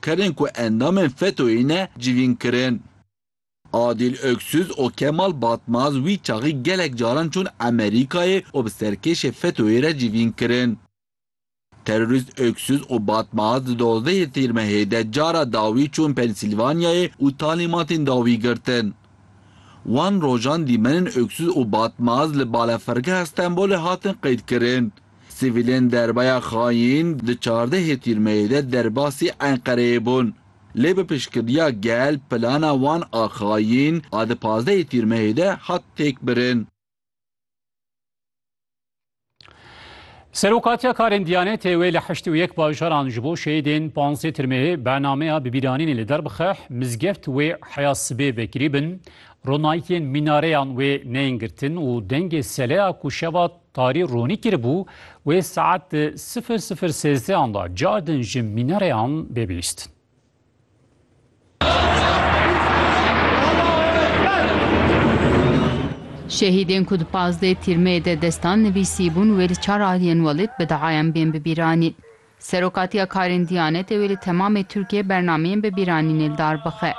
Kerên ku endamên FETÖ'yê ne civîn kirin. Adîl Öksüz û Kemal Batmaz wî çaxî gelek caran çûn Amerîkayê û bi serkêşê FETÖ'yê re civîn kirin. Terorîst Öksüz û Batmaz di dozdehê Tîr Mehê de cara dawî çûn Pensîlvanyayê û talîmatên dawî girtin. Wan rojan dîmenin Öksüz û Batmaz li Balafirgeha Stenbolê hatin qeydkirin. Sivîlên derbaya xayîn di çardehê tîrmeyê de derbasî Enqereyê bûn. Lê bi piştgiriya gel plana wan a xayîn a di pazdehê tîrmehê de hat têkbirin. Serokatiya karên Diyanetê wê li heşt û yek bajaran ji bo şehîdên panzdeh tirmehê bernameya bibîranînê li der bixe, mizgeft wê heya sibê vekirî bin, ronayîkên mînareyan wê neyên girtin û dengê seleya ku şeva Tarî ronî kiribû wê saet di sifir sifir sêzdeyan de cardin ji mînareyan bê bihîstin. Şehîdên ku di pazdeh tîrmeyê de destan nivîsîbûn wê li çar aliyên welêt bi diayan bên bibîranîn. Serokatiya karên Diyanetê wê li temamê Tirkiyeyê bernameyên bi bîranînê li dar bixe.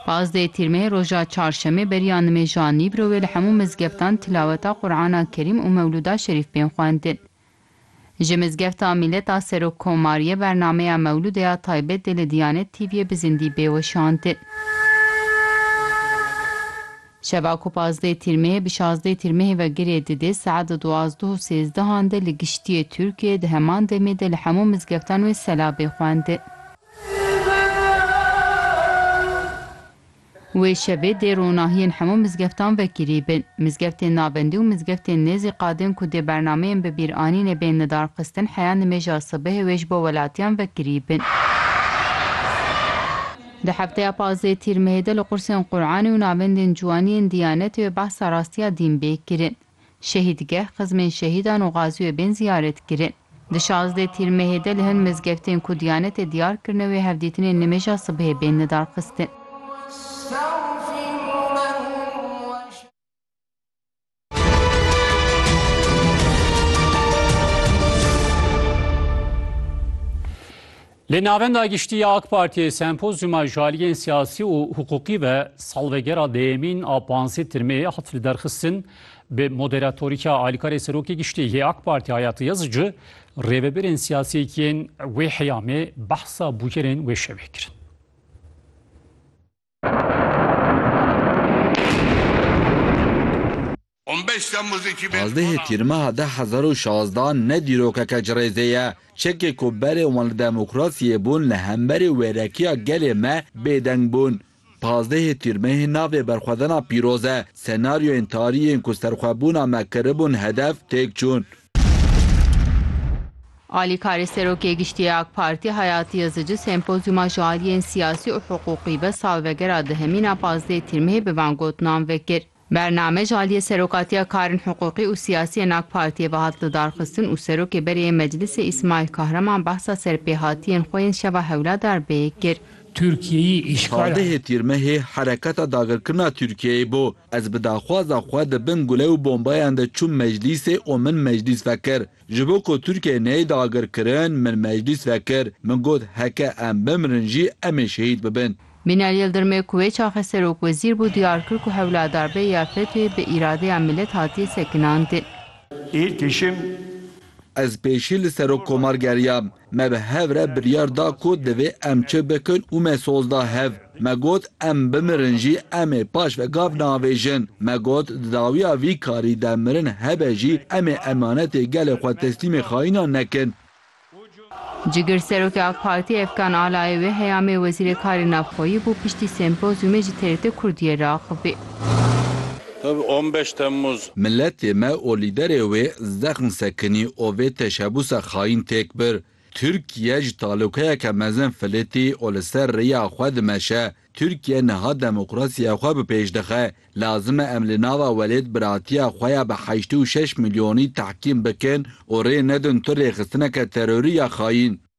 Pazdeh Tîrmeyê roja Çarşemê beriya nimêja Nîbro wê li hemû mizgeftan tilaweta Qur'ana Kerîm û Mewluda Şerîf bên xwendin. Ji Mizgefta Mîlet a Serokkomariyê bernameya Mewlude ya taybet dê li Diyanet TV'yê bi zindî bê weşandin. Şeva ku pazdeh tîrmehê bi şazdeh tîrmehê ve girê didê saet duwazdeh û sêzdehan de li giştiyê Tirkiyê di heman demê de li hemû mizgeftan wê selabê xwendi. Wê şevê dê ronahiyên hemû mizgeftan vekirî bin. Mizgeftên navendî û mizgeftên nêzî qadên ku dê bernameyên bibîranînê bên lidarxistin heya nimêja sibehê wê ji bo welatiyan vekirî bin. Di hefteya pazdeh Tîr Mehê de li qursên Quranê û navendên ciwaniyên Diyanetê ve behsa rastiya dîn bê kirin. Şehîdgeh, xizmên şehîdan û gazî wê bên ziyaret kirin. Di şazdeh Tîr Mehê de li hin mizgeftên ku Diyanetê diyar kirine wê hevdîtinên nimêja sibehê bên lidarxistin. Li Navenda Giştî ya AK Partiyê sempozyuma ji aliyên siyasî û hiqûqî ve salvegera dêyemîn a panzdeh tirmê hat li derxistin bi moderatorîka alîkarê Serokê Giştî yê AK Partî Hayati Yazıcı rêvebirên siyasî yên wê heyamê behsa bûyerên wê şevê kirin. Pazdehê Tîrmeha de hezar û şazda ne dîrokeke ci rêzê ye. Çekê ku berê wan li demokrasiyê bûn li hemberî wêrekiya gelê me bêdeng bûn. Pazdehê Tîrmehê navê berxwedana pîroz e. Senaryoyên tarî yên ku serxwebûna me kiribûn hedef têk çûn. Alîkarê Serokê Giştî yê AK Partî Hayatî Yazıcı sempozyûma ji aliyên siyasî û hiqûqî ve salvegera dihemîn a pazdeh Tîrmihê bi van gotinan vekir. Bername ji aliyê Serokatiya Karên Hiqûqî û Siyasî yên AK Partiyê ve hat lidarxistin û Serokê Berê yê Meclisê Îsmaîl Kahraman behsa serpêhatiyên xwe yên şeva Hewla Darbeyê kir. Tirkiyeyî îşkala. Pazdehê Tîrmihê hereketa dagirkirina Tirkiyeyê bû. Ez bi daxwaza xwe di bin gule û bombayan de çûm meclîsê û min meclîs vekir. Ji bo ku Tirkiye neyê dagirkirin, min meclîs vekir. Min got heke em bimirin jî em ê şehîd bibin. Bînal Yildirmê ku wê çaxê serokwezîr bû diyar kir ku Hewladarbeyê ya FETÖ'yê bi îradeya milet hatiye sekinandin. Î tişim. Ez pêşî li serokkomar geriyam. Me bi hev re biryar da ku divê em çi bikin û me soz da hev. Me got em bimirin jî em ê paş ve gav neavêjin. Me got di dawiya vî karî de mirin hebe jî em ê emanetê gelê xwe teslîmê xayînan nekin. Cigir Serokê AK Partiyê Efkan Ala ê wê heyamê Wezîrê Karê Navxweyî bû piştî sempozyumê ji TRT Kurdiyê re axivî. Tabi on beş Temmuz. Miletê me û lîderê wê zexm sekinî û vê teşebusa xayîn têk bir. Tirkiye ji talûkeyeke mezin filitî û li ser rêya xwe dimeşe. Tirkiye niha demokrasiya xwe bi pêş dixe. Lazim e em li nava welêt biratiya xwe ya bi heştê û şeş milyonî tehkîm bikin û rê nedin tu rêxistineke terorî ya xayîn.